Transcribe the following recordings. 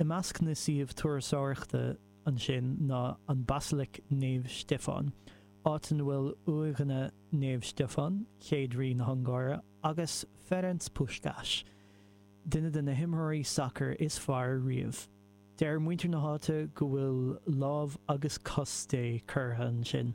I measc na suíomh turasóireachta ansin ná an Baisleac Naomh Stiofáin, áit ina bhfuil uaigheanna Naomh Stiofáin, chéad rí na hUngáire, agus Ferenc Puskás, duine de na himreoirí sacair is fearr riamh. Deir muintir na háite go bhfuil lámh agus cos Dé curtha ansin.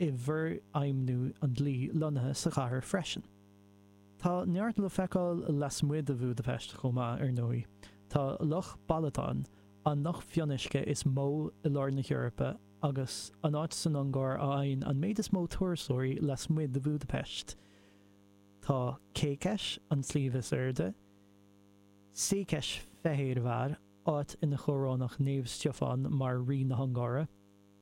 i bhforfheidhmiú an dlí lonnaithe sa chathair freisin. Tá neart le feiceáil lasmuigh de Bhúdaipeist chomh maith, ar ndóigh. Tá Loch Balaton, an loch fionnuisce is mó i lár na hEorpa, agus an áit san Ungáir a fhaigheann an méid is mó turasóirí lasmuigh de Bhúdaipeist. Tá Kékes, an sliabh is airde, Székesfehérvár, áit inar chorónaíodh Naomh Stiofán mar rí na hUngáire.